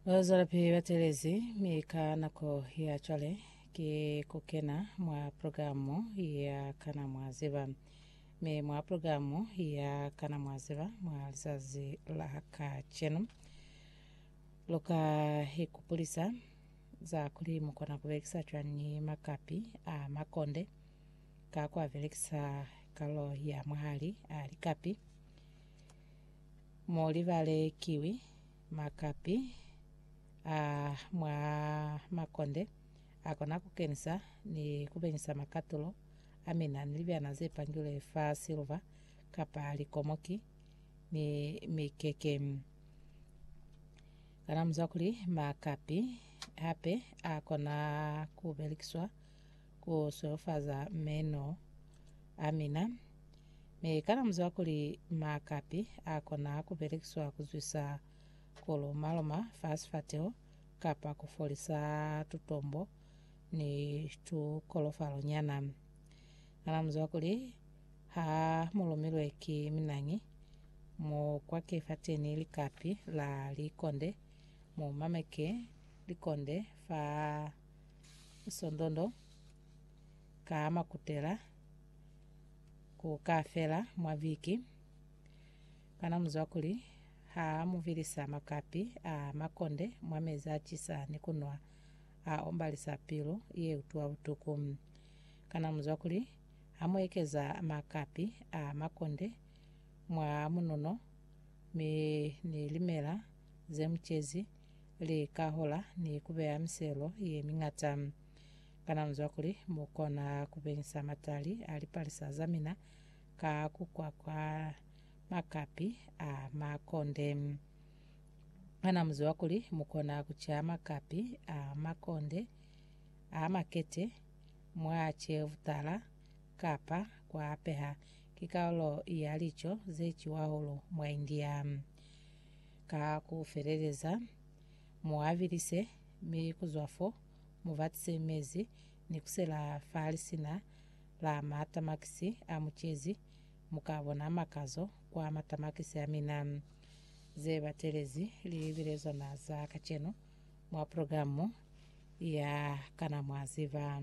Bazwalapi batelezi mi ka nako ya cwale ki kukena mwa programu ya Kana Mwa Ziba. Mi mwa programu ya Kana Mwa Ziba mwa zazi la kacenu, luka ikupulisa za kuli mukona kubelekisa cwañi makapi a makonde ka kuabelekisa kalulo ya mwahali a likapi. Mo libale kiwi, makapi a mwa makonde a kona ku kenisa ni ku benyisa makatulo a mina ni libyana ze pangilwe fa siluva kapa likomoki ni mikeke. Kana mu zwa kuli makapi hape a kona ku belekiswa Ku solofaza meno a mina. Mi kana muzwa kuli makapi a kona ku belekiswa ku zwisa ku loma-loma fa sifateho kapa ku folisa tutombo ni tukolofalo nyana. Kana muzwa kuli ha mu lumilwe ki minañi, mu kwake fateni likapi la likonde, mu mameke likonde fa Sondondo ka makutela ku ka fela mwa viki. Kana muzwa kuli ha muvilisa makapi a makonde mwa mezi a cisa ni kunwa a ombalisa pilu ye utwa butuku? Kana muzwa kuli ha mu ekeza makapi a makonde mwa munono mi ni limela ze mucezi li ka hola ni ku beya miselo ye miñata. Kana mu zwa kuli mu kona ku beñisa matali a lipalisa za mina ka ku kwakwa makapi a makonde? Kana mu ziba kuli mu kona ku ca makapi a makonde a makete mwa ce butala kapa ku a peha? Ki kaulo ya lico ze ciwa hahulu mwa India. Ka ku feleleza, mu abilise, mi ku zwa fo, mu batise mezi, ni ku sela fa lisina la matamakisi a mu cezi, mu ka bona makazo kwa matamakisi a mina. Ze batelezi li bile zona za kacenu mwa programu ya Kana Mwa Ziba?